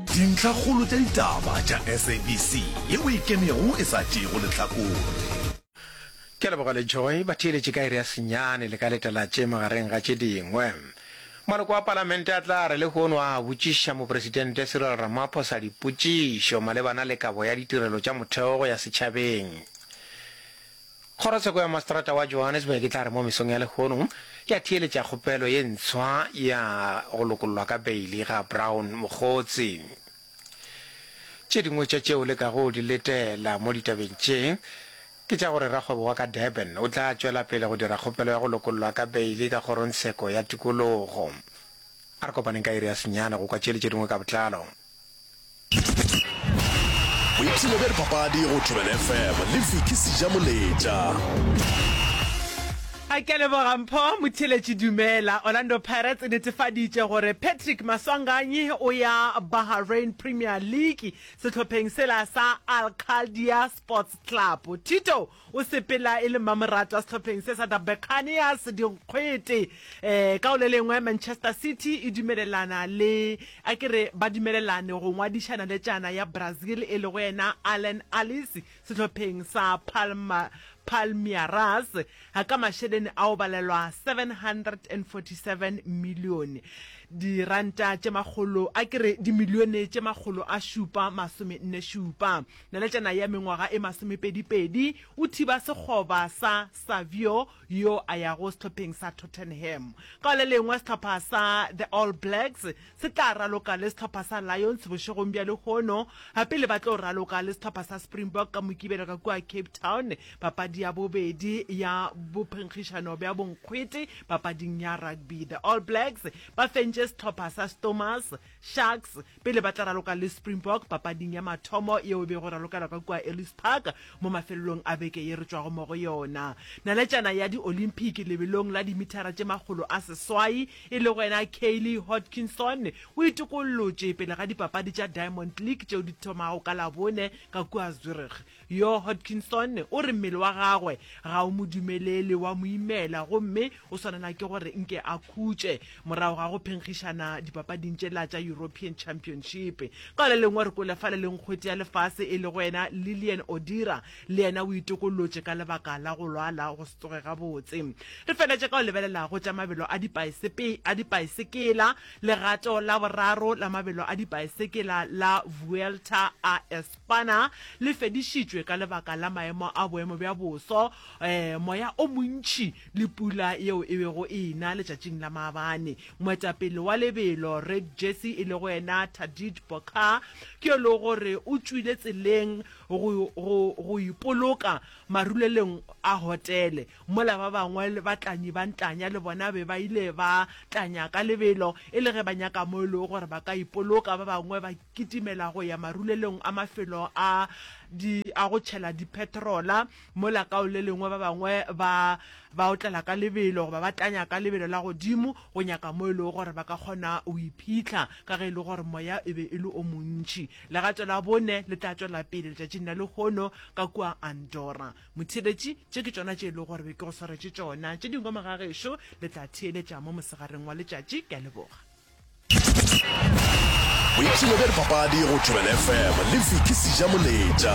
Dintlhakgolo tša ditaba tša SABC ye o e kemego e sa tšeego lehlakore. Ke a leboga le Joy. Ba theeletše ka iri ya senyane le ka letalatše magareng ga tše dingwe. Maloko a palamente a tla re lehono a botšiša mopresidente Cyril Ramaphosa dipotšišo malebana le kabo ya ditirelo tša motheo go ya setšhabeng. Kgorotsheko ya Maseterata wa Johannesburg e tla re mo mesong ya lehono ya theeletša kgopelo ye ntshwa ya go lokollwa ka beili ga Brown Mokgotsi. Tše dingwe tša tšeo le kago di letela mo ditabeng tše ke tša gore rakgwebo wa ka Durban o tla tšwela pele go dira kgopelo ya go lokollwa ka beili ka Kgorongtsheko ya Tikologo. A re kopaneng ka iri ya senyane go kwa tše le tše dingwe ka botlalo. boipshino bja dipapadi go thobela fm le viki seja moletša a ke leboga mpho motheletši dumela orlando pirates e netefaditše gore patrick maswanganyi o ya bahrain premier league sehlopheng sela sa al khaldia sports club thito O sepela e le mmamoratwa wa sehlopheng se sa The Buccaneers, Dikgwete. Um ka go le lengwe, Manchester City e dumelelana le, a ke re ba dumelelane go ngwadiša naletšana ya Brazil e lego yena Allan Alice sehlopheng sa Palma, Palmeiras, ka mašeleni a go balelwa R747 milione, diranta tše makgolo, a ke re dimilione tše makgolo a šupa masome nne šupa. Naletšana ya mengwaga e masomepedipedi o thiba sekgoba sa Savio yo a yago sehlopheng sa Tottenham. Ka le lengwe sehlopha sa The All Blacks se tla raloka le sehlopha sa Lions bošegong bja lehono, ga pele ba tlo raloka le sehlopha sa Springbok ka Mokibelo ka kua Cape Town, papadi ya bobedi ya bophenkgišano bja bonkgwete papading ya rugby. The All Blacks ba fentše sehlopha sa Stormers. Sharks pele ba tla raloka le Springbok papading ya mathomo yeo e bego e ralokelwa ka kua Ellis Park mo mafelelong a beke ye re tšwago mo go yona. Naletšana ya Di-Olympic lebelong la dimithara tše makgolo a seswai e lego yena Kaylee Hodgkinson o itokollotše pele ga dipapadi tša Diamond League tšeo di thomago ka Labone ka kua Zurich. Yoo Hodgkinson o re mmele wa gagwe ga o mo dumelele, wa mo imela gomme o swanela ke gore nke a khutše morago ga go phenkgišana dipapading tšela tša European Championship. Ka le lengwe re kwele fa le leng kgwete ya lefase e lego yena Lilian Odira le yena o itokollotše ka lebaka la go lwala go se tsoge gabotse. Re feletše ka go lebelela go tša mabelo a a dipaesekela, legato la boraro la mabelo a dipaesekela la Vuelta a Bana, le fedišitšwe ka lebaka la maemo a boemo bja boso, moya o montši le pula yeo e bego e na letšatšing la maabane. Moetapele wa lebelo, Red Jersey, e lego yena Tadej Pogacar, ke yo e lego gore o tšwile tseleng go ipoloka marulelong a hotele. Mola ba bangwe le batlanyi ba ntlanya le bona be ba ile ba tlanya ka lebelo, e le ge ba nyaka mo e lego gore ba ka ipoloka. Ba bangwe ba kitimela go ya marulelong a mafelo a di a go tšhela dipetrola, mola ka o le lengwe ba bangwe ba ba otlela ka lebelo goba ba tlanya ka lebelo la godimo go nyaka mo e lego gore ba ka kgona go iphitlha, ka ge e le gore moya e be e le o montši. Legato la bone le tla tšwela pele letšatšing la lehono ka kua Andorra. Motheeletši, tše ke tšona tše e lego gore be ke go swaretše tšona. Tše dingwe moga gešo le tla theeletša mo mosegareng wa letšatši. Ke a leboga. Boipshino bja dipapadi go Thobela FM le Vicky Sijamoletša.